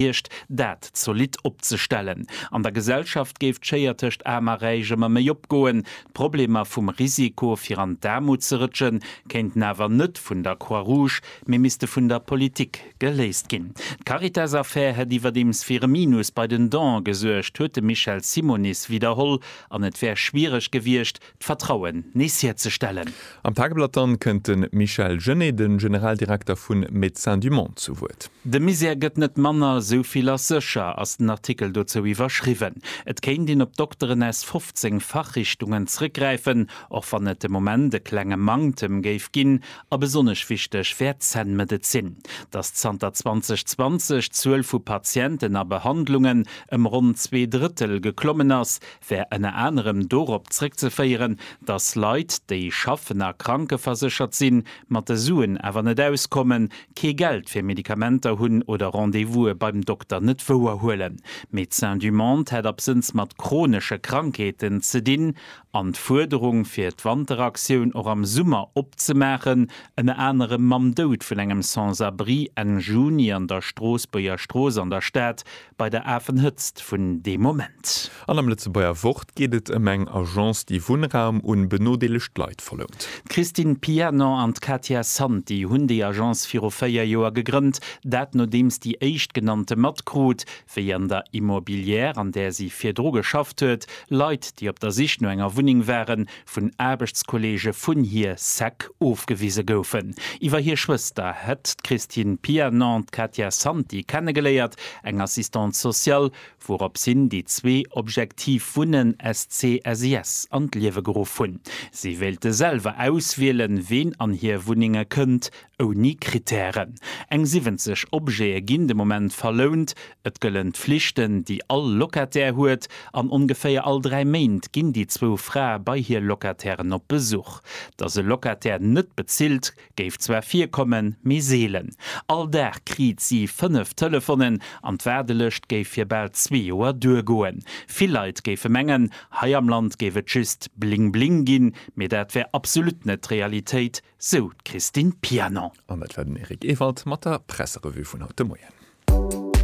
Kiercht, dat zolidd opzestellen. An der Gesellschaft géif d'Schéier tëscht Aarm a Räich ëmmer méi opgoen. D'Problemer vum Risiko, fir an d'Aarmut ze rëtschen, kéinten awer net vun der Croix Rouge, mee misste vun der Politik geléist ginn. D'Caritas-Affär hätt iwwerdeems fir e Minus bei den Donen gesuergt, huet de Michel Simonis widderholl, an et wär schwiereg gewiescht, d'Vertrauen nees hierzestellen. Am Tageblatt dann kënnt de Michel Genet, de Generaldirekter vu Médecins du Monde zu Wuert. De Misär gëtt net manner, esou vill ass sécher, ass den Artikel dozou iwwerschriwwen. Et kéint een op Dokteren aus 15 Fachrichtungen zréckgräifen, och wann et de Moment e klenge Manktem géif ginn. A besonnesch wichteg wär d'Zännmedezin. Datt zanter 2020 d'Zuel vu Patienten a Behandlungen ëm ronn zwee Drëttel geklommen ass, wär ënner anerem dorop zrëckzeféieren, datt Leit, déi schaffen a krankeverséchert sinn, mat de Suen awer net auskommen, kee Geld fir Medikamenter hunn oder Rendez-vouse beim Dokter net wouer huelen. Médecins du Monde hätt absënns mat chronesche Krankheeten ze dinn an d'Fuerderung, fir d'Wanteraktioun och am Summer opzemaachen, ënner anerem mam Doud vun engem Sans-abri Enn Juni an der Stroossbuerger Strooss an der Stad, Bei der Afenhëtzt vun deem Moment. An am Lëtzebuerger Wort geet et ëm eng Agence, déi Wunnraum un benodeelegt Leit verlount. D'Christine Pianon an d'Katia Santi hunn déi Agence viru véier Joer gegrënnt, dat nodeems déi Éischtgenannte matkrut, wéi an der Immobilière, an där si virdru geschafft huet, Leit, déi op der Sich no enger Wunneng waren, vun Aarbechtskolleege vun hir Säck ofgewise goufen. Iwwer hir Schwëster hätt d'Christine Pianon d'Katia Santi kennegeléiert, eng Assistante sociale, wourops hin déi zwee Objektiv Wunnen SC-SIS an d'Liewe geruff hunn. Si wéilte selwer auswielen, ween an hir Wunnenge kënnt ouni Krittären. Eng 70 Objete ginn de Moment verlount. Et gëllen d'Flichten, déi all Locataire huet, an ongeféier all dräi Méint ginn déi zwou Frae bei hir Locatairen op Besuch. Datt e Locataire net bezilt, géif zwar virkommen, mee seelen. All Dag kriit si fënnef Telefonen an d'Waardelëscht géif fir bal zwee Joer duergoen. Vill Leit géife mengen, hei am Land géif et just Bling-Bling ginn, mee dat wär absolut net d'Realitéit, sou d'Christine Pianon. An dat war den Eric Ewald mat der Presserevue vun haut de Moien.